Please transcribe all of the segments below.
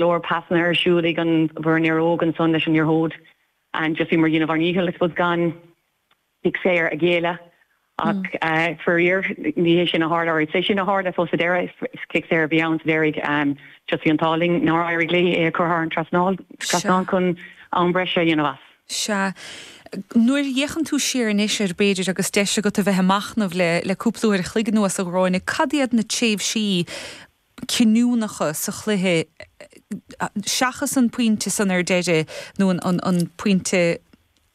leor pasanna ar siúl ag an bhfoireann Éire Óg ansan leis an liathróid and just bhíomar a dhéanamh ár ndícheall I suppose gan cic saor a ghéilleadh ach faraor ní hé sin a tharla or is é sin a tharla I suppose sa deireadh is cic saor a bhí ann sa deiridh and just bhí an t-ádh linn nár éirigh léi é a chur thar an trasnáil trasnán chun am breise a dhéanamh as. Sea. Nuair a fhéachann tú siar anois ar b'fhéidir agus deis agat a bheith ag machnamh le le cúpla uair a chloig anuas a Ghráinne cad iad na tréimhsí cinniúnacha sa chluiche seachas an pointe san ar deireadh nó an pointe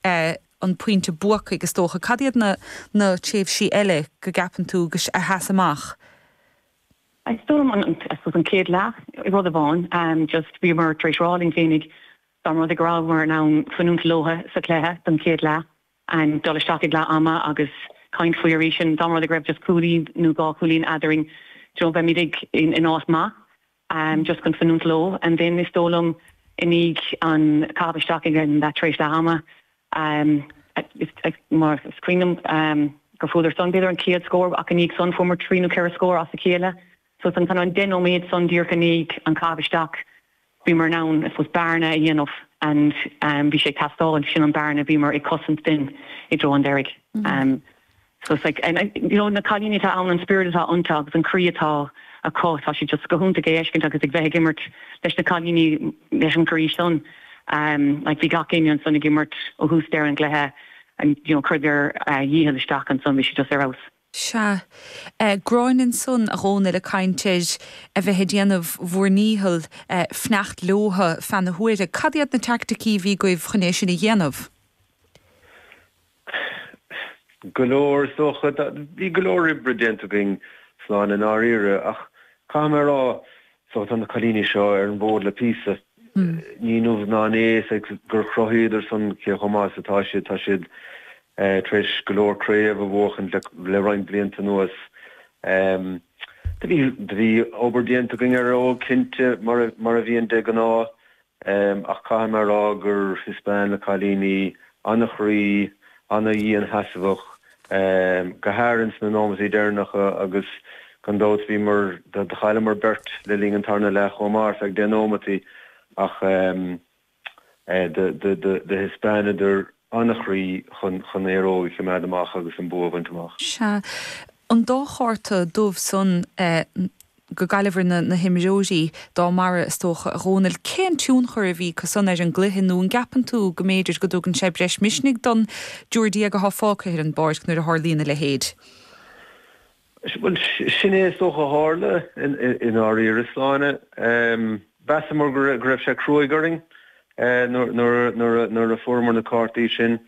an pointe buacaigh is dócha. Cad iad na na tréimhsí eile go gceapann tú go a sheas amach? Is dóigh liom an I suppose an chéad leath rud amháin just bhíomar tar éis rá linn féinig dá mba rud é go rabhamar in ann fanúint leothu sa chluiche don chéad leath and dul isteach ag leath ama agus caint faoi arís sin. Dá mba rud é go raibh just cúilín nó dhá chúilín eadarainn you know bheimid ag in áit maith just chun fanúint leo and then is dóigh liom i ndiaidh an caitheamh isteach ag an tar éis leath ama mar is cuimhin liom gur fuaireadar san b'fhéidir an chéad scór ach i ndiaidh san fuaireamar trí nó ceithre scór as a chéile. So san an deich nóiméad san díreach i ndiaidh an caitheamh isteach bhíomar in ann I suppose bearna a dhéanamh and bhí sé ag teastáil agus sin an bearna a bhíomar ag cosaint then i dtreo an deiridh. So it's like and you know na cailíní atá ann an spiorad atá ionta agus an croí atá acu tá sé just go hiontach é a fheiscint agus a bheith ag imirt leis na cailíní leis an gcroí san like bhí gach éinne ansan ag imirt ó thús deireadh an gcluiche and you know chuireadar a ndícheall isteach ansan bhí sé just ar fheabhas. Sea. Gráinne ansan, a Dhónaill, a' caint ar a bheith a' déanamh bhur ndícheall fanacht leothu feadh na huaire. Cad iad na teaicticí a bhí agaibh chun é sin a dhéanamh? Sea. Go leor, is dócha. Bhí go leor oibre déanta againn, Sláine, i ndáiríre, ach caithfidh mé a rá, So tá na cailíní seo ar an bhfód le píosa. Ní inniu ná inné is ea gur chruthaíodar san cé chomh maith is atá siad. Tá siad tar éis go leor craobh a bhuachaint le roinnt blianta anuas. Do bhí obair déanta againn ar Éire Óg cinnte, mar a bhíonn de ghnáth, Em, ach caithfidh mé a rá gur, thaispeáin na cailíní, an-chroí, an-dhiansheasmhacht, em, go háirithe ins na nóimeataí deireanacha agus gan dabht bhíomar, do chailleamar beirt le linn an tarna leath chomh maith ar feadh deich nóimeataí ach em, eh, do, do, do, do thaispeánadar an-chroí chun, chun Éire Óg a choimeád amach agus an bua a bhaint amach. Sea. an dá chárta dubh san eh go gcaillfear na na himreoirí dá mbarr is dócha, a Dhomhnaill. Cén tionchar a bhí acu san ar an gcluiche nó an gceapann tú go mb'fhéidir go dtugann sé breis misnigh don dtriúr déag atá fágtha ar an bpáirc nuair a tharlaíonn a leithéid? Bhuel sin é is dócha a tharla i ndáiríre, Sláine. Em mheasamar go raibh sé cruaidh orainn eh nuair a nuair a nuair a fuaireamar na cártaí sin.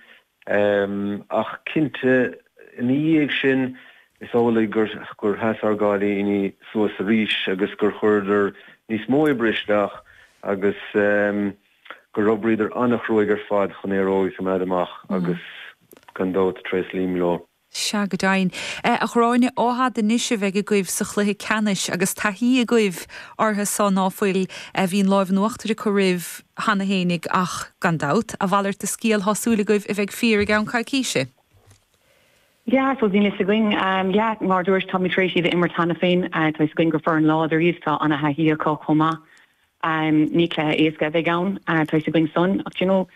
Ach cinnte, ina dhiaidh sin, is amhlaidh gur sheas ár gcailíní suas arís agus gur chuireadar níos mó oibre isteach agus gur oibríodar an-chruaidh ar fad chun Éire Óg a choimeád amach agus gan dabht, tréaslaím leo. Sea, go deimhin. A Ghráinne, Achadh Deo anois a bheidh agaibh sa chluiche ceannais agus taithí agaibh orthu so, ná fuil? Bhí an lámh in uachtar acu oraibh cheana fhéinig ach, gan dabht, a mhalairt de scéal tá súil agaibh a bheidh fíor i gceann coicíse. Yeah, so bhí 'fhios againn, yeah, mar a dúraís, táimid tar éis iad a imirt cheana féin, tá 'fhios againn gur foireann láidir iad, tá ana-thaithí acu chomh maith. Amm, ní cluiche éasca a bheidh ann, tá fhios againn san, ach d'you know,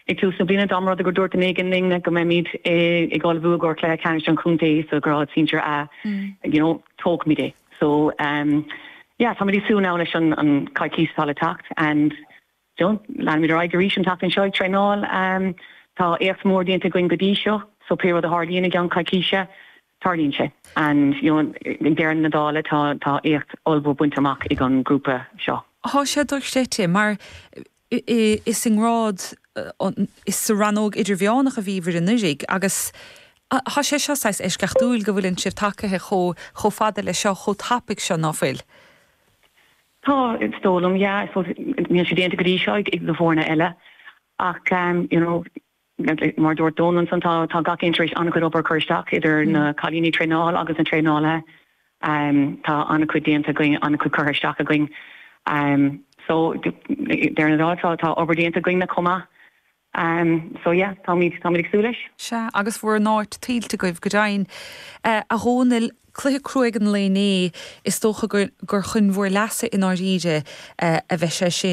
ag tús na bliana dá mba rud é gur dúirt duine éigin linn go mbeimid ag ullmhú i gcomhair Cluiche Ceannais an Chontae sa ghrád sinsir 'A', d'you know, tógfaimid é. So, amm, yeah, táimid ag súil now leis an gcoicís atá le teacht and, d'you know, leanfaimid ar aghaidh arís an tseachtain seo ag traenáil. Amm, tá éacht mór déanta againn go dtí seo so pé rud a tharlaíonn i gceann coicíse, Tarlaíonn sé. And you know ag deireadh na dála tá, tá éacht ollmhór bainte amach ag an grúpa seo. Tá sé dochreidte mar is i ngrád an, is sa rannóg idirmheánach a bhíobhair anuiridh agus tá sé seo saghas eisceachtúil go bhfuileann sibh tagaithe chomh chomh fada leis seo, chomh tapaidh seo, ná fuil? Tá, is dóigh liom, yeah, I suppose níl sé déanta go dtí seo ag na foirne eile ach you know, Mar a dúirt Dónall ansan, tá gach aon tar éis an-chuid obair a chur isteach, idir na cailíní ag traenáil agus na traenálaithe. Tá an-chuid déanta againn, an-chuid curtha isteach againn. So, deireadh na dála, tá obair déanta againn-na chomh maith. So, yeah, táimid ag súil leis. Sea, agus bhur n-áit tuillte agaibh go deimhin. A Dhónaill, cluiche crua ar nós an lae inné, is dócha gur chun bhur leasa i ndáiríre a bheidh sé sin.